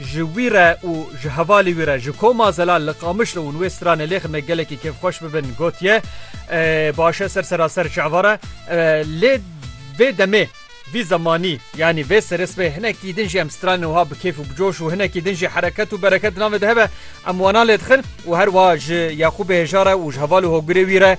Ji wî re û ji hevalê wî re ji koma zelal li Qamişlo û wê stranê lêxin me gelekî kêfxweş bibin gotiye, Baş e ser seraser ji eva re. Lê vê demê, vî zemanî yanî vê serê sibê hinekî din jî em stranên wiha bi kêf û bi coş û hinekî din jî hereket û bereket di navê de hebe em wana lê dixin û her wiha ji Yaqûbê hêja re û ji heval û hogirê wî re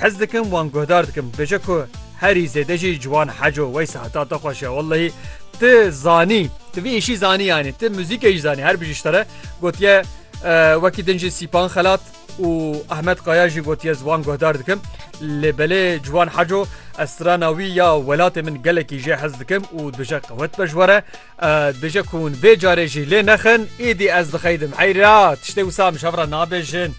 Hez dikim wan guhdar dikim dibêje ku herî zêde jî ciwan Heco Weysa heta te xweş ya wellahî ti zanî ti vî îşî zanî yanî ti muzîkê jî zanî her bijî ji te re gotiye wekî din jî Sîpan Xelat û Ahmet Kaya jî gotiye ji wan guhdar dikim lê belê ciwan Heco ez strana wî ya welatê min gelekî jê hez dikim û dibêje qewet be ji we re Dibêje ku hûn vê carê jî lê nexin, îdî ez dixeydim. Eyy ra, tiştê wisa em ji hev re nabêjin.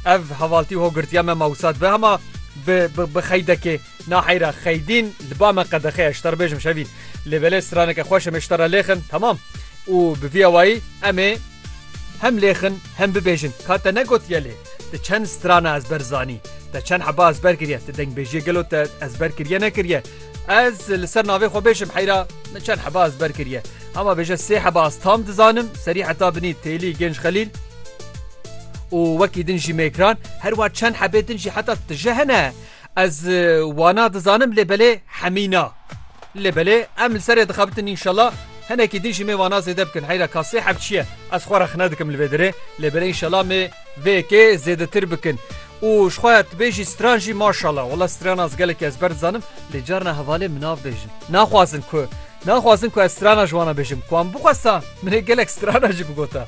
Ev hevaltî hogirtiya me ma wisa dibe hema bi bi xeydekê. Na heyy ra xeydîn li ba me qedexe ye, ji te re bêjim şevîn. Lê belê straneke xweş em ê ji te re lêxin, temam. Û bi vî awayî em ê hem lêxin hem bibêjin. Ka te negotiye lê te çend strana ezber zanî, te çend heba ezber kiriye, te dengbêjiyê gelo te ezber kiriye nekiriye? Ez li ser navê xwe bêjim heyra min çend heba ez ber kiriye. Hema bêje sê heba ez tam dizanim serî heta binî têlî gênc xelîl û wekî din jî mêkran her wa çend hebê din jî heta tije hene ez wana dizanim lê belê hemîna lê belê em li serê dixebitin înşela henekî din jî mê wana zêde bikin heyra ka sê heb çiye ez xwe rexne dikim li vê dirê lê belê înşela mê vê yekê zêdetir bikin. Û ji xwe tu bêjî stran jî maşallah. Wala stran ez gelekî ezber dizanim lê carina hevalê min nav bêjin. Naxwazin ku naxwazin ku ez strana ji wan bêjim. Ku wan bixwesta min ê gelek strana jî bigota.